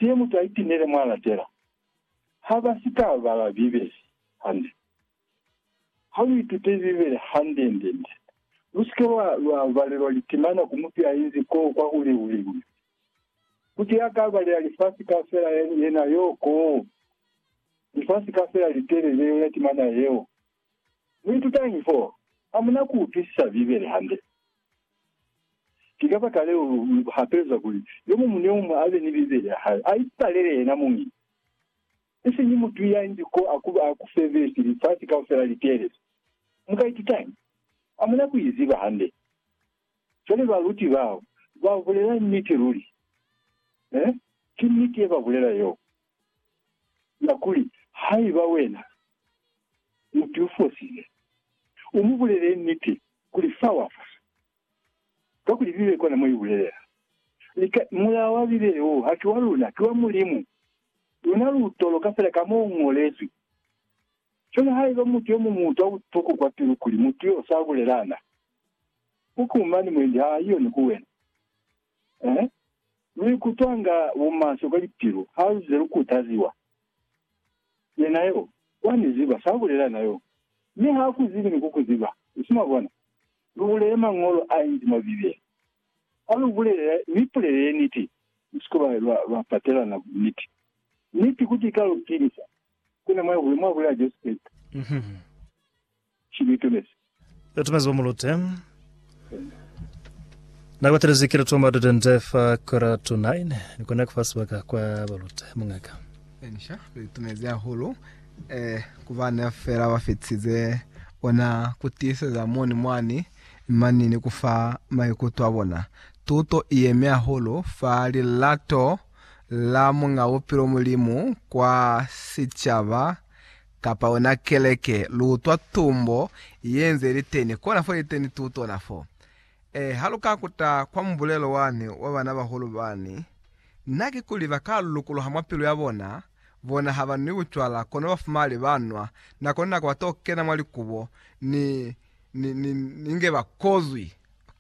Ki mutu a itinele mwa latela. Ha ba si ka bala Bibele hande. Ha lu itute Bibele hande-nde-nde. Lu si ke lwa, lwa balelwa litimana ku mutu ya inzi koo kwa ku liu-liu. Mutu ya ka balela lifasi kaufela yena yoo koo, lifasi kaufela litelele, yona timana yeo. Muitutañi fo hamuna ku utwisisa Bibele hande? Ki kabakaleo lu hapelezwa kuli yomuñwi ni yomuñwi abe ni Bibele ya hae, a ipalele yena muñi, isiñi mutu yangi ko a ku febezi lifasi kaufela li teelezi. Mu ka itutañi? Hamuna ku i ziba hande. Cwale baluti bao ba bulela niti luli. Ee, ki niti ye ba bulela yeo. Ya kuli, Haiba wena mutu yo fosile, u mu bulelele niti kuli fa wa fosa. Kakuli Bibele kona mo i bulelela. Li ka, Mulao wa Bibele wo haki wa luna, ki wa Mulimu. Luna lu toloka fela ka mo u ñolezwi. Cwale haiba mutu yo muñwi utwa butuku kwa pilu kuli mutu yo sa bulelana, u kumani mwendi ha yoni ku wena. He, lu ikutwanga bumaswe kwa lipilu ha lu ze lu kutaziwa? Yena yo, wa ni ziba, sa bulela na yo. Mi ha ku zibi ni ku ku ziba. Nsi mwa bona? Lu bulele Mañolo a inzi mwa Bibele. Ha lu bulele, lu ipulelele niti. Musiko lwa, lwa, lwa patelana niti. Niti kuti i ka lu pilisa. Ku na mwa ye hule, mwa bulela Jesu Kreste. ki luitumezi. Luitumezi lwa mulute na batelezi ki lutumo ba dudende fa kora tu 9 ni kona kufa sibaka kwa balute. Mungaka. Elisha luitumezi hahulu eh, ku bana fela ba fitize ona ku tiiseza moni mwani mani ni kufa maikuto a bona. Tuto i yemi hahulu fa lilato la Muñ'a Bupilo Mulimu kwa sicaba. kapa ona keleke luutwa tumbo yenze iliteni kona fo iliteni tutona fo e haluka kuta kwa mubulelo wani wa bana bahulu bani na kikuli baka lukuluha mwa pilu ya bona bona ha banwi bucwala kono bafumali banwa nako ni nako bato kena mwa likubo ni ni ni ni nge bakozwi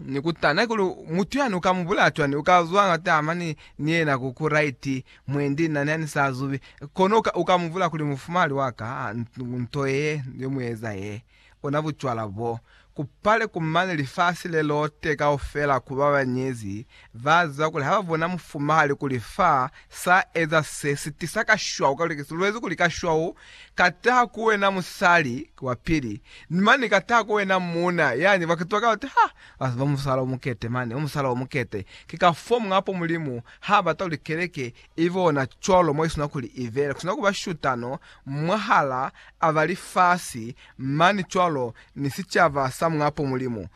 ni kutana kuli mutu yani uka mubulaya cwani uka zwa nga tama ni ni yena ku ku right mwendi nna nani sa zubi kono uka uka muvula kuli mufumali waka nto ye yo mueza ye ona bucwala bo kupale kumane lifasi le lote kaufela kuba banyezi Ba ziba kuli ha ba bona mufumahali kuli fa sa eza se si tisa kashwau ka luteke, si lwezi kuli kashwau ka taha ku wena musali wa pili, ni mane ka taha ku wena muuna. Yani ba kituba ka lute, Ha ba ziba musala o mukete mane, musala o mukete. Ki ka fo muñapo Mulimu ha bata kuli keleke i be ona cwalo mo i sina kuli i bele, ku sina kuba shutano mwahala a ba lifasi mane cwalo ni sicaba sa muñapo Mulimu.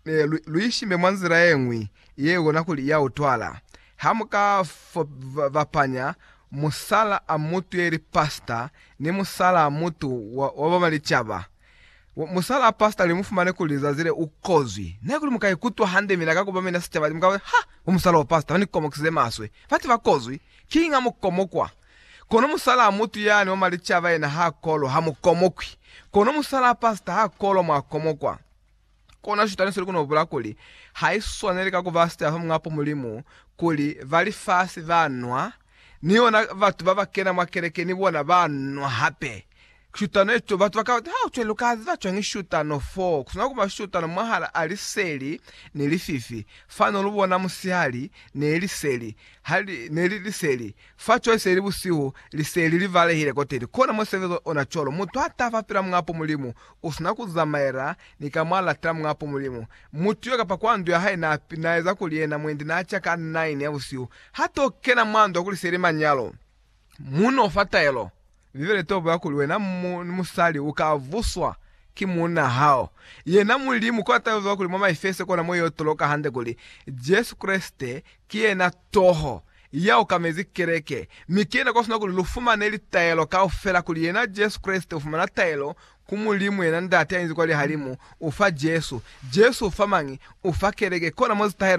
Eh, lu, lu ishime mwa nzila ye ñwi ye kona kuli ya utwala. Ha mu ka fo, va, vapanya musala a mutu ye li pasta ni musala a mutu wa, wa ba ba licaba, wa, musala a pasta li mu fumane kuli zazi le u kozwi. Na kuli mu ka ikutwa hande, mina ka kuba mina sicaba, mu ka ba, Ha! Ko musala wa pasta, ba ni komokisize maswe. Batu ba kozwi. Kiñi ha mu komokwa? Kono musala a mutu yani wa malicaba yena ha kolwa, ha mu komokwi. Kono musala a pasta ha kolwa, mwa komokwa. Kono Shetani usili kono bula kuli haiswaneli ka kuba sitaya fa Muñ'a po Mulimu, kuli ba lifasi ba nwa, ni yona batu baba kena mwa keleke ni bona ba nwa hape. Shutano ye to, batu bakaba bati, Haucwe, luka ziba cwañi shutano fo? Kusina kuba shutano mwahala a liseli ni lififi. Fani ulubona musihali, ne liseli, ha li, ne li liseli. Fa cwale se li busihu, liseli li balehile koteni. Kono mo sebezo ona cwalo. Mutu ha taba pela Muñ'a po Mulimu, usina ku zamaela ni ka mwa lata mwa po Mulimu. Mutu yo kapa kwa ndu ya hae na naeza kuli yena mwendi na ca ka 9 ya busihu, ha to kena mwa ndu kuli seli manyalo. Mu no fa taelo. Bibele to bulela kuli wena mu, ni musali u ka vuswa ki muuna hao. Yena Mulimu kona tayo zwa kuli mwa Maefeso kona mo yo toloka hande kuli Jesu Kreste ki yena toho, ya okamezi keleke, mi ki yena kwasina kuli lufumane litaelo kaufela, kuli yena Jesu Kreste ufumana taelo ku Mulimu, yena Ndate ainzi kwa lihalimu, ufa Jesu. Jesu ufa mañi? Ufa keleke. Kona mo zitahelo nshi?